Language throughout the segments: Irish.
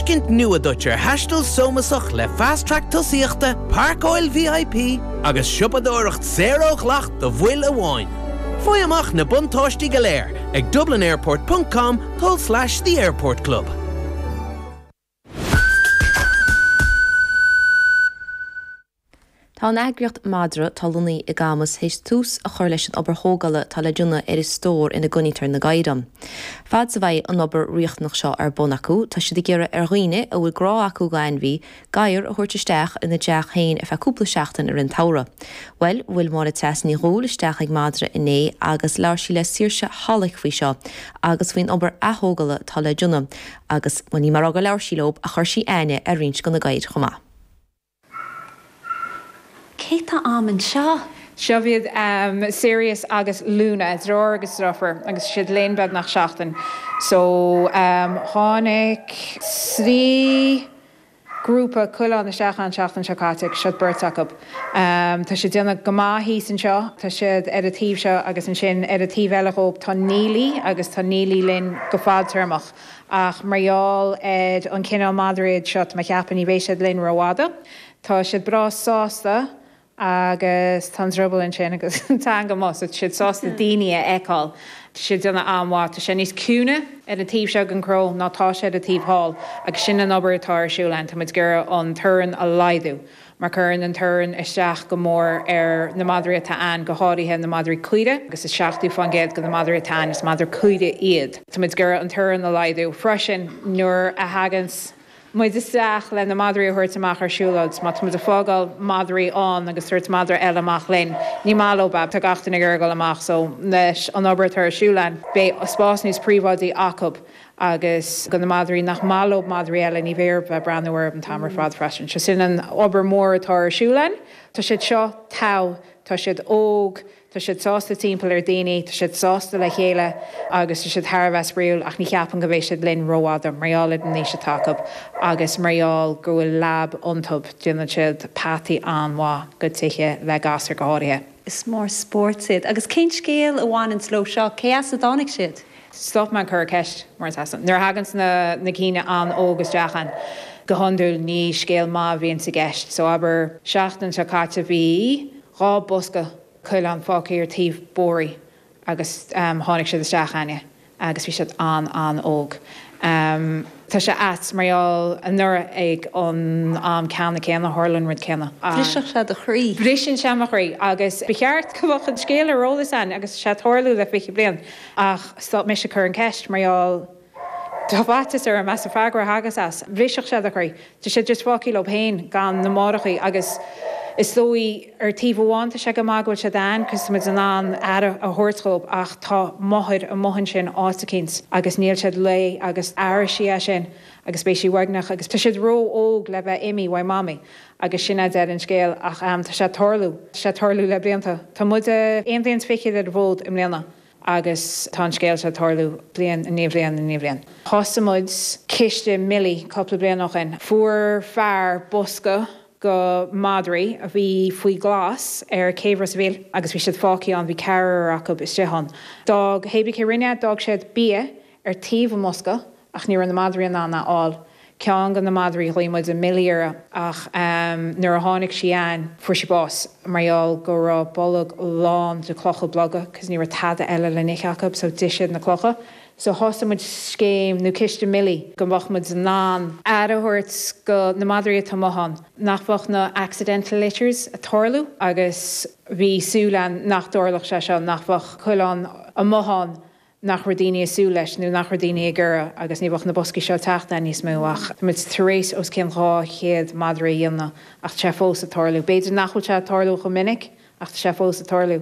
tuiscint nua duit ar thaisteal sómasach le Fast Track Tosaíochta, Pairceáil VIP agus Siopadóireacht Saor ó Dhleacht do Bhaill amháin. Faigh amach na buntáistí go léir ag dublinairport ponc com com slash the airport club. Tá an eagraíocht Madra atá lonnaithe i gCamus théis tús a chur leis an obair thógála atá le déanamh ar an stór ina gcoinnítear na gadhair ann. Fad 's a bheidh an obair riachtanach seo ar bun acu, tá siad ag iarraidh ar dhaoine a bhfuil grá acu go ainmhí, gadhar a thabhairt isteach ina dteach féin ar feadh cúpla seachtain i rith an tsamhraidh. Bhuel, bhuail Máire Treasa Ní Dhubhghaill isteach ag Madra inné agus labhair sí le Saoirse Halick faoi seo agus faoin obair aththógala atá le déanamh agus, bhuel ní amháin gur labhair sí leob ach chuir sí aithne ar roinnt go na gadhair chomh maith. Cé tá a'am anseo? Seo iad Sirius agus Luna, deartháir agus driofúr, agus tá siad linn beagnach seachtain. So, tháinig trí grúpa coileán isteach a'inn an tseachtain seo caite agus seo beirt acu. Tá siad ag déanamh go maith thíos anseo, tá siad ar an taobh seo agus ansin ar an taobh eile dhób tá Neilí agus tá Neilí linn go fadtéarmach. Ach mar gheall ar an chineál madraí iad seo, ní cheapaim, ní bheidh siad linn rófhada. Tá siad breá sásta agus tá an drioball ansin agus an teanga amu', so tá siad sásta daoine a fheiceáil. Tá siad ag déanamh an-mhaith. Tá sé níos ciúine ar an taobh seo den chró ná tá sé ar an taobh thall agus sin an obair atá ar siúl a'inn. Tá muid ag iarraidh an torann a laghdú. mar cuireann an torann isteach go mór ar na madraí atá ann, go háirithe na madraí caorach, agus is 70% de na madraí atá ann, is madraí caorach iad. Tá muid ag iarraidh an torann a laghdú freisin nuair a thagann muid isteach le na madraí a thabhairt amach ar siúlóid, má tá muid ag fágáil madraí ann agus ag tabhairt madra eile amach linn, ní maith leo beith, tá gach duine ag iarraidh dul amach, so leis an obair atá ar siúl a'inn, beidh spás níos príobháidí acu. agus do na madraí nach maith leo madraí eile, ní bheidh orthu breathnú orthu an t-am ar fad freisin. Sea, sin an obair mhór atá ar siúl a'inn. Tá siad seo tá, tá siad óg, tá siad sásta timpeall ar dhaoine, tá siad sásta le chéile agus tá siad thar a bheith spraíúil ach ní cheapaim go mbeidh siad linn rófhada, mar gheall ar an aois atá acu agus mar gheall go bhfuil lab iontu, déanann siad peataí an-mhaith go tithe le gasúir go háirithe. Is mór spóirt iad. Agus cén scéal a bhaineanns leo seo? Cé as a dtáinig siad? Stop mé ag cur ceist, mar gheall air sin. Nuair a thaganns na na cinn an-óg isteach a'inn, go hiondúil ní scéal maith a bhíonns i gceist. So, abair, seachtain seo caite bhí dhá bosca coileán fágtha ar taobh bóithrí agus tháinig siad isteach a'inne agus bhí siad an-an-óg. Tá sé ait, mar gheall anuraidh ag an am ceannann céanna tharla an rud céanna. Bhrisfeadh sé do chroí. Briseann sé mo chroí agus ba cheart go mbeadh an scéal ar eolas againn agus tá sé ag tarlú le fiche bliain ach stop mise ag cur an cheist mar gheall tá faitíos orm as an freagra a thagas as. Bhrisfeadh sé do chroí. Tá siad just fágthaí leob féin gan na máithreachaí agus is dóigh ar taobh amháin tá sé go maith go bhfuil siad ann cos tá muid in ann aire a thabhairt dhóib ach tá máthair amuigh ansin áit eicínt agus níl siad léi agus aireoidh sí é sin agus beidh sí uaigneach agus tá siad ró-óg le bheith imithe uaidh mamaí agus sin é deireadh an scéal ach tá sé ag tarlú, tá sé ag tarlú le blianta, tá muide aon bhliain 's fiche ar an bhfód i mbliana. Agus tá an scéal seo ag tarlú bliain i ndiaidh bliain i ndiaidh bliain. Thosaigh muid ciste Milly cúpla bliain ó shin. Fuair fear bosca go madraí a bhí faoi ghlas ar Céibh Ros a' Mhíl agus bhí siad fágthaí ann, bhí ceathrar acu istigh ann. D'fhág, hébrí cé rinne, d'fhág siad bia ar thaobh an bhosca ach ní raibh na madraí in ann a fháil. Ceann de na madraí, ghlaoigh muid Milly uirthi ach nuair a tháinig sí againn fuair sí bás mar gheall go raibh a bolg lán de clocha beaga cos ní raibh tada eile le n-ithe acu so d'ith siad na clocha. So thosaigh muid scéim nó ciste Milly go mbeadh muid in ann aire a thabhairt go na madraí atá amuigh ann, nach bheadh na accidental litters a' tarlú agus bhí súil againn nach dtarlódh sé seo, nach bheadh coileáin amuigh ann nach raibh daoine ag súil leis nó nach raibh daoine ag iarraidh agus ní bheadh na boscaí seo ag teacht againn níos mó ach tá muid tar éis os cionn 200 madra a dhéanamh ach tá sé fós ag tarlú. B'fhéidir nach bhfuil sé ag tarlú chomh minic ach tá sé fós ag tarlú.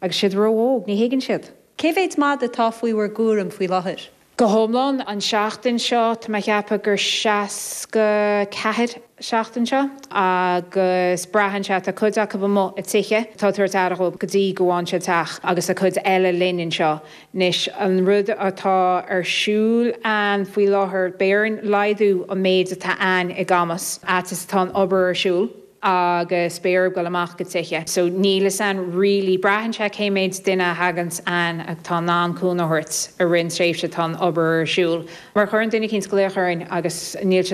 Agus siad ró-óg, ní thuigeann siad. Cé mhéid madadh atá faoi bhur gcúram faoi láthair? Go hiomlán, an tseachtain seo, tá mé ag ceapadh gur 64. seachtain seo agus braitheann sé, tá cuid acu amuigh ag tithe atá ag tabhairt aire dhóib go dtí go bhfaigheann siad teach agus tá cuid eile linn anseo. Anois an rud atá ar siúl againn faoi láthair, beidh orainn laghdú an méid atá againn i gCamus, a fhad is atá an obair ar siúl agus beidh orthu dul amach go tithe so níl fhios againn really, braitheann sé cé méid duine a thaganns againn atá in ann cúnamh a thabhairt i rith an tréimhse atá an obair ar siúl má chuireann duine eicínt glaoch orainn agus níl siad